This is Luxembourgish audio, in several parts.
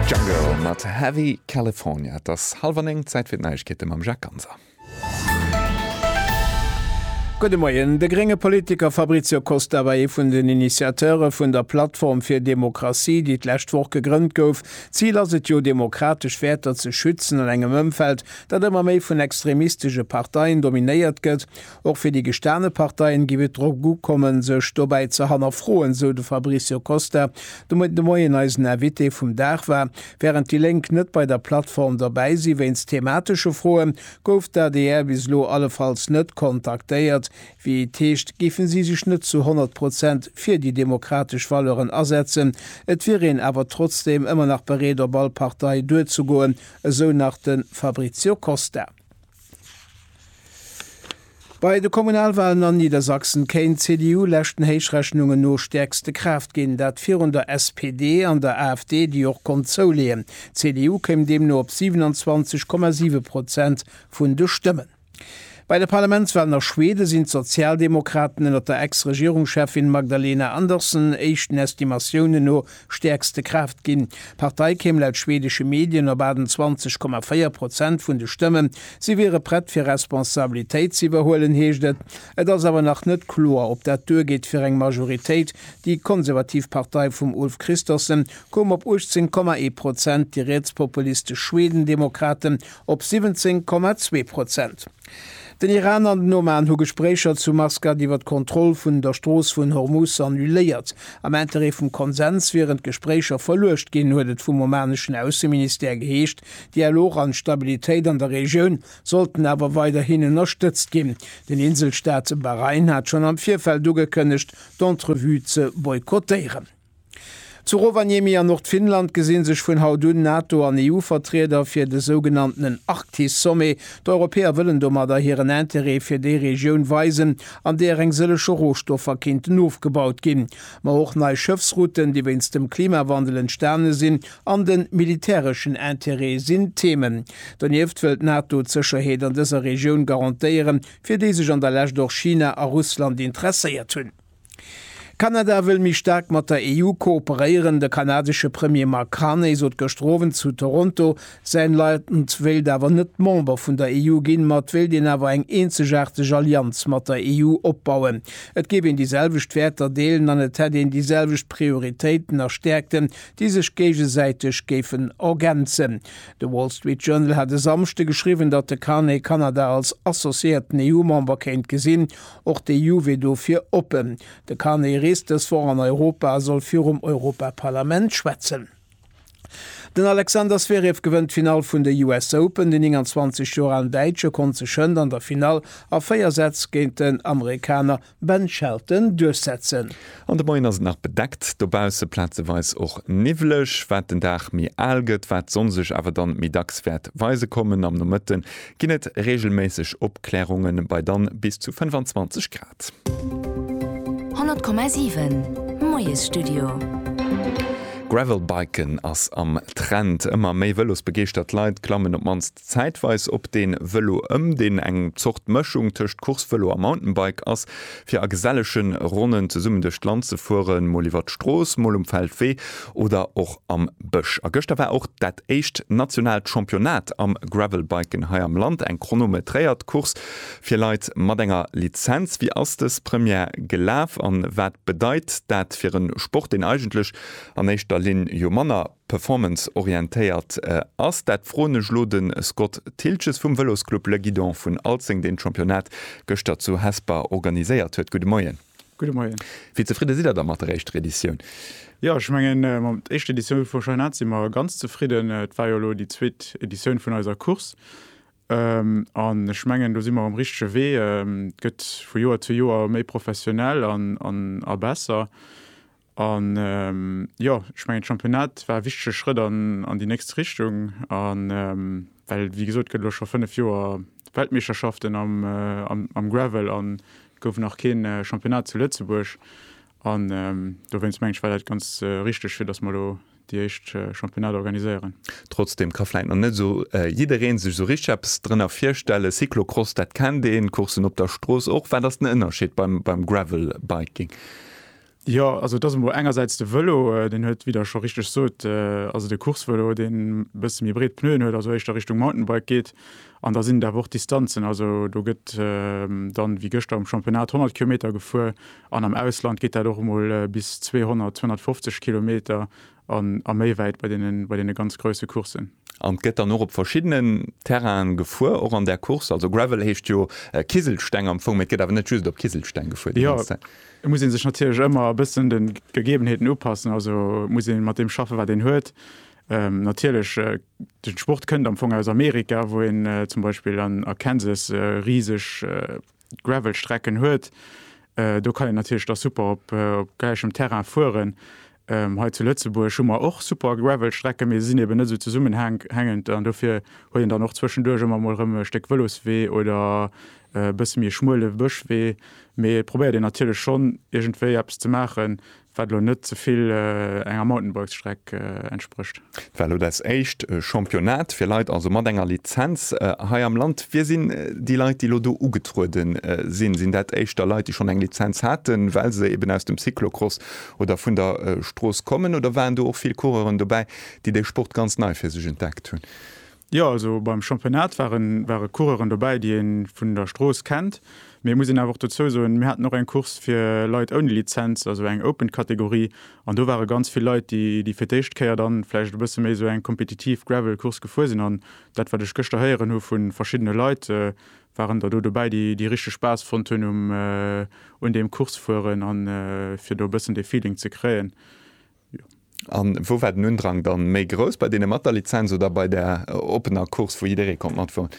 Jungle mat Heavy California. Et ass hallwer néng, Zäit fir d'Neiegkeete mam Jacques Ganser. Gudde Moien. De grénge Politiker Fabrizio Costa war ee vun den Initiateure vun der Plattform fir Demokratie, déi d'lescht Woch gegrënnt gouf. D'Zil ass et jo, demokratesch Wäerter ze schützen an engem Ëmfeld, dat ëmmer méi vun extremistesche Parteien dominéiert gëtt. Och fir déi gestane Parteien géif et drop ukommen, sech dobäi ze hannerfroen, sou de Fabricio Costa, de Moien de Moien eisen Invité vum Dag war. Wärend déi Lénk net bei der Plattform dobäi si wéinst thematesche Froe gouf d'ADR bis elo allefalls net kontaktéiert. Wéi et heescht, géife si sech net zu 100 Prozent fir déi demokratesch Valeuren asetzen. Et wier een awer trotzdeem ëmmer nach bereet op all Partei duerzegoen, esou nach de Fabricio Costa. Bei de Kommunalwalen an Niedersachsen kéint d'CDU leschten Héichrechnungen no stäerkste Kraaft ginn, dat virun der SPD an der AfD, déi och konnt zouleeën. D'CDU kéim deemno op 27,7 Prozent vun de Stëmmen. Bei de Parlamentswalen a Schweden sinn d'Sozialdemokraten ënner der Ex-Regierungscheffin Magdalena Andersson éischten Estimatiounen no stäerkste Kraaft ginn. D'Partei kéim laut schwedesche Medien op 28,4 Prozent vun de Stëmmen. Si wiere prett fir Responsabilitéit ze iwwerhuelen, heescht et. Et ass awer nach net kloer, ob dat duergeet fir eng Majoritéit. Déi konservativ Partei vum Ulf Kristersson koum op 18,1 Prozent, déi rietspopulistesch Schwedendemokraten op 17,2 Prozent. Den Iran an den Oman hu Gespréicher zu Maskat iwwer d'Kontroll vun der Strooss vun Hormuz annuléiert, am Interêt vum Konsens wieren d'Gespréicher verluecht ginn, huet et vum omaneschen Ausseministère geheescht. Dialog an Stabilitéit an der Regioun sollten awer weiderhin ënnerstëtzt ginn. Den Inselstaat Bahrain hat schonn am Virfeld ugekënnegt, d'Entrevue ze boykottéieren. Zu Rovaniemi an Nordfinnland gesi sech vun haut un Nato an EU-Vertrieder fir de sougenanntenen Arktis-Sommet. D'Europäer wëllen domadder hiren Interêt fir déi Regioun weisen, an deeër eng sëlleche Rohstoffer kéinten ofgebaut ginn. Ma och nei Schëffsrouten, déi wéinst dem Klimawandel entstane sinn, an de militäreschen Interêt sinn Themen. Donieft wëll d'Nato d'Sécherheet an dëser Regioun garantéieren, fir déi sech an der Lescht och China a Russland interesséiert hunn. Kanada wëll méi staark mat der EU kooperéieren. De kanadesche Premier Mark Carney sot gëschter Owend zu Toronto, säin Land wéilt awer net Member vun der EU ginn, ma et wéilt een awer eng eenzegaarteg Allianz mat der EU opbauen. Et géif een déi selwecht Wäerter deelen an et hätt een déi selwecht Prioritéiten a Stäerkten, déi sech géigesäiteg géifen ergänzen. De Wall Street Journal hat e Samschde geschriwwen, datt de Carney Kanada als associéierten EU-Member kéint gesinn, Och de Juve dofir oppen. De Carney reest dës Woch an Europa a soll virum Europaparlament schwätzen. Den Alexander Zverev gewënnt d'Finall vun de US Open. Den 29 Joer alen Däitsche konnt sech hënt an der Finall a 4 Sätz géint den Amerikaner Ben Shelton duerchsetzen. An de Moien ass et nach bedeckt dobausse, plazeweis och niwwleg. Wat den Dag méi al gëtt, wat d'Sonn sech awer dann méi dacks wäert weise kommen. Am Nomëtte ginn et reegelméisseg Opklärungen bei dann bis zu 25 Grad. 100,7 Moiesstudio. Gravelbiken ass am Trend. Ëmmer méi Vëlosbegeeschtert Leit klammen op d'mannst zäitweis op dee Vëlo ëm, deen eng Zort Mëschung tëscht Coursevëlo a Mountainbike ass, fir a gesellegen Ronnen zesummen duerch d'Land ze fueren, mol iwwer d'Strooss, mol um Feldwee oder och am Bësch. A gëschter war och dat éischt nationaalt Championnat am Gravelbiken hei am Land, eng chronometréiert Course fir Leit mat enger Lizenz. Wéi ass dës Première gelaf an wat bedeit dat fir en Sport, deen eigentlech an éischter Linn jo manner. performanceorientéiert ass? Dat froen ech elo de Scott Thiltges vum Vëlosclub Le Guidon vun Alzeng, deen d'Championnat gëschter zu Hesper organiséiert huet. Gudde Moien. Gudde Moien. Wéi zefridde sidd Der da mat der éischter Editioun? Jo, ech mengen, mat der éischter Editioun vum Championnat si mer ganz zefridden. Et war jo elo déi zweet Editioun vun eiser Course an ech mengen, do si mer um richtege Wee. Et gëtt vu Joer zu Joer méi professionell a besser. A jo, ech mengen, de Championnat war e wichtege Schrëtt an déi nächst Richtung, well, wéi gesot, et gëtt elo scho fënnef Joer Weltmeeschterschaften am Gravel an et gouf nach kee Championnat zu Lëtzebuerg. An dowéinst mengen ech, war dat ganz richteg, fir datt mer elo déi éischt Championnat organiséieren. Trotzdeem ka vläit nach net esou jidderee sech esou richteg eppes drënner virstellen. Cyclocross, dat kennt een, Courssen op der Strooss och. Wat ass den Ënnerscheed beim Gravelbiking? Jo, also et ass emol engersäits de Vëlo, deen huet, wéi Der scho richteg sot, also de Coursevëlo, deen e bësse méi breet Pneuen huet, also éischter Richtung Mountainbike geet. An da sinn et awer och d'Distanzen, also do gëtt dann, wéi gëschter um Championnat, 100 Kilometer gefuer an am Ausland geet dat och emol bis 200, 250 Kilometer, a méi wäit bei deene ganz grousse Courssen. An et gëtt dann och op verschiddenen Terrainen gefuer, och an där Course. Also Gravel heescht jo Kiselsteng am Fong, mee et gëtt awer net just op Kiselsteng gefuer déi ganz Zäit. Jo, et muss ee sech natierlech ëmmer e bëssen de Gegebenheeten upassen. Also et muss ee mat deem schaffen, wat een huet. Natierlech, de Sport kënnt am Fong aus Amerika, wou een zum Beispill a Kansas riseg. Gravelstrecken huet, do kann een natierlech da super op gläichem Terrain fueren. Hei zu Lëtzebuerg hu mer och super Gravelstrecken, mee se sinn eben net esou zesummenhängend an dofir huet een dann och zwëschenduerch ëmmer emol erëm e Stéck Vëloswee oder e bësse méi schmuele Bëschwee. Mee et probéiert een natierlech schonn iergendwéi eppes ze maachen, Wat elo net ze vill enger Mountainbikes-Streck entsprécht. Dat war elo dat éischt Championnat fir Leit also mat enger Lizenz hei am Land. Wie sinn déi Leit, déi elo do ugetruede sinn? Sinn dat éischter Leit, déi schonn eng Lizenz haten, well se eben aus dem Cyclocross oder vun der Strooss kommen? Oder waren do och vill Coureuren dobäi, déi dee Sport ganz nei fir sech entdeckt hunn? Jo, also beim Championnat ware Coureuren dobäi, déi ee vun der Strooss kennt. Mee et muss een awer och dozou soen, mir haten och eng Course fir Leit ouni Lizenz, also eng Open-Kategorie. An do ware ganz vill Leit, déi fir d'éischt Kéier dann vläicht e bësse méi esou eng kompetitiv Gravel-Course gefuer sinn. An dat, wat ech gëschter héieren hu vu verschiddene Leit, waren der do dobäi, déi richteg Spaass fonnt hunn un deem Course-Fueren a fir do e bëssen dee Feeling ze kréien. A wou war den Undrang da méi grouss, bei deene mat der Lizenz oder bei der oppener Course, wou jidderee konnt matfueren?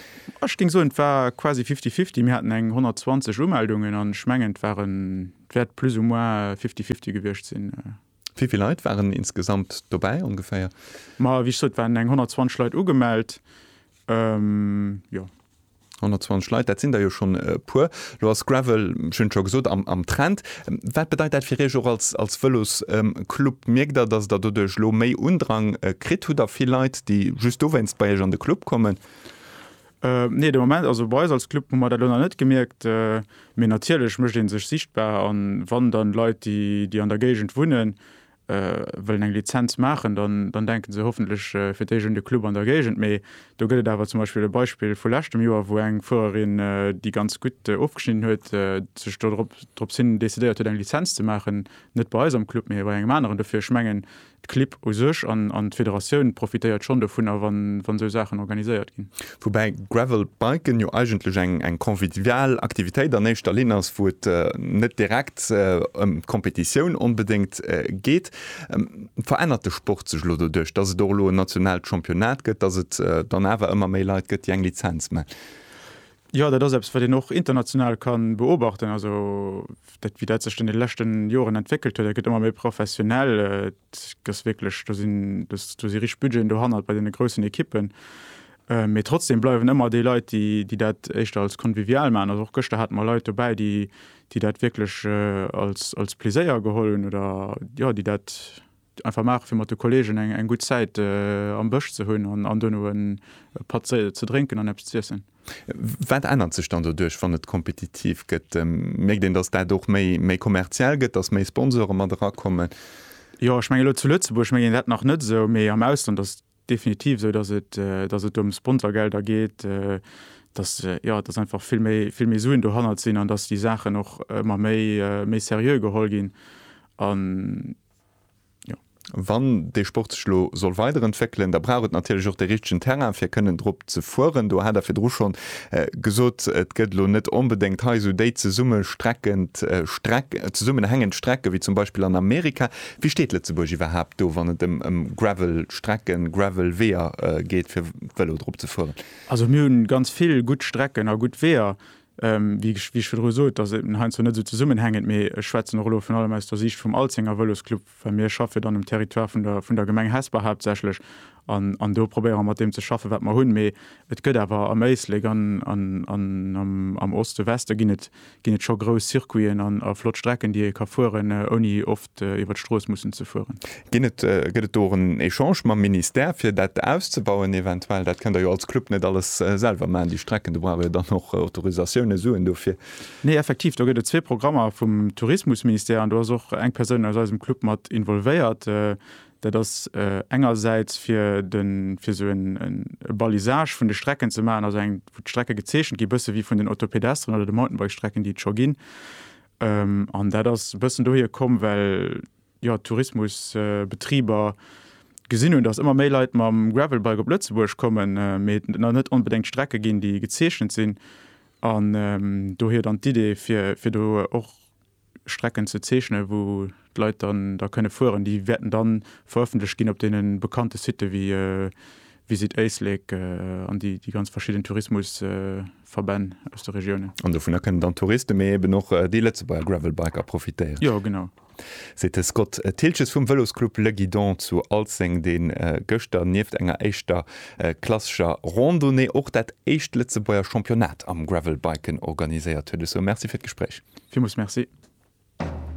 Ech géing soen, et war quasi fifty-fifty. Mir haten eng 120 Umeldungen an ech mengen, et wäert plus ou moins fifty-fifty gewiescht sinn. Wéi vill Leit waren insgesamt dobäi ongeféier? Ma wéi ech sot, et waren eng 120 Leit ugemellt, jo. 120 Leit, dat sinn der jo schonn e puer. Elo ass Gravel, ech hunn et scho gesot, am Trend. Wat bedeit dat fir Iech och als Vëlosclub? Mierkt Der, datt Der doduerch elo méi Undrang kritt? Hutt Der vill Leit, déi just dowéinst bei Iech an de Club kommen? Nee, de Moment, also bei eis als Club hu mer dat elo nach net gemierkt. Mee natierlech mécht ee sech sichtbar, a wann dann Leit, déi an der Géigend wunnen, wëllen eng Lizenz maachen, dann denken se hoffentlech fir d'éischt un de Club an der Géigend. Mee do gëtt et awer zum Beispill e Beispill vu leschtem Joer, wou eng Fuererin, déi ganz gutt ofgeschnidden huet, sech dorop dorops hin decidéiert huet, eng Lizenz ze maachen, net bei eis am Club, mee bei engem aneren. Dofir, ech mengen, d'Clibb u sech an d'Federatioun profitéiert schonn dovunner, wann esou Saachen organiséiert ginn. Woubäi Gravel biken jo eigentlech eng eng convivial Aktivitéit an éischter Linn ass, wou et net direkt ëm d'Competitioun onbedéngt geet. Verännert de Sport sech elo doduerch, dass et och elo en nationaalt Championnat gëtt, dass et dann awer ëmmer méi Leit gëtt, déi eng Lizenz ma? Jo, dat ass eppes, wat een och international ka beobachten, also dat wéi dat sech an de leschten Joren entwéckelt huet. Dat gëtt ëmmer méi professionell. gëss wierklech, do sinn do si rich Budgeten dohannert bei deene groussen Ekippen. Äh, mee trotzdem bleiwen ëmmer déi Leit, déi, déi dat éischter als convivial maachen. Also och gëschter hate mer Leit dobäi, déi, déi dat wierklech äh, als, als Pleséier geholl hunn oder jo, déi dat einfach maache fir mat de Kolleegen eng, eng gutt Zäit äh, am Bësch ze hunn an, an duerno en Patt ze, ze drénken an eppes z'iessen. Wat ännert sech dann doduerch, wann et kompetitiv gëtt? Mierkt een, datt dat och méi kommerziell gëtt, datt méi Sponsore mat erakommen? Jo, ech mengen elo zu Lëtzebuerg mengen dat nach net esou, mee am Ausland ass et definitiv esou, datt et datt et ëm Sponsorgelder geet, datt jo datt einfach vill méi vill méi Suen dohannert sinn an datt déi Saachen och ëmmer méi méi seriö geholl ginn an. Wann dee Sport sech elo soll weiderentwéckelen, da brauch et natierlech och de richtegen Terrain, fir kënnen drop ze fueren. Do hat Der virdru schonn gesot, et gëtt elo net onbedéngt hei esou déi zesummestreckend Streck, zesummenhängend Strecke wéi zum Beispill an Amerika. Wéi steet Lëtzebuerg iwwerhaapt do, wann et ëm ëm Gravelstrecken, Gravelweeër geet, fir Vëlo drop ze fueren? Also mir hu ganz vill gutt Strecken a gutt Weeër, Wéi ech virdru sot, dat ass heiansdo net esou zesummenhängend, mee ech schwätzen och elo virun allem aus der Siicht vum Alzenger Vëlosclub, well mir schaffe jo dann um Territoire vun der Gemeng Hesper haaptsächlech an do probéiere mer mat deem ze schaffen, wat mer hunn. Mee et gëtt awer am Éislek an am Oste, Weste ginn et scho grouss Circuiten a flott Strecken, déi ee ka fueren, ouni iwwer d'Strooss mussen ze fueren. Ginn et, gëtt et do och en Echange mam Ministère, fir dat auszebauen eventuell? Dat kënnt Der jo als Club net alles selwer maachen, déi Strecken, do braucht Der jo dann och Autorisatiounen, Suen dofir. Nee, effektiv, do gëtt et zwee Programmer vum Tourismusministère an do ass och eng Persoun aus eisem Club mat involvéiert. Dat ass engersäits fir de, fir esou e Balisage vun de Strecken ze maachen, also eng, wou d'Strecke gezeechent gi bësse wéi vun den Autopedestren oder de Mountainbike-Strecken, déi et scho ginn. An dat ass e bëssen dohier komm, well jo d'Tourismusbetriber gesinn hunn, datt ëmmer méi Leit mam Gravelbike op Lëtzebuerg kommen, mee et nach net onbedéngt Strecke ginn, déi gezeechent sinn. An dohier dann d'Idee, fir do och Strecken ze zeechnen, wou d'Leit dann da kënne fueren. Déi wäerten da verëffentlecht ginn op deene bekannte Sitte wéi Visit Éislek an déi ganz verschidden Tourismus. Verbänn aus de Regiounen. An dovunner kënnen dann d'Touristen, mee eben och déi Lëtzebuerger Gravelbiker profitéieren. Jo, genau. Seet de Scott Thiltges vum Vëlosclub Le Guidon zu Alzeng, dee gëschter nieft enger éischter klassescher Randonnée och dat éischt Lëtzebuerger Championnat am Gravelbiken organiséiert huet. Esou, Merci fir d'Gespréich. Villmools Merci.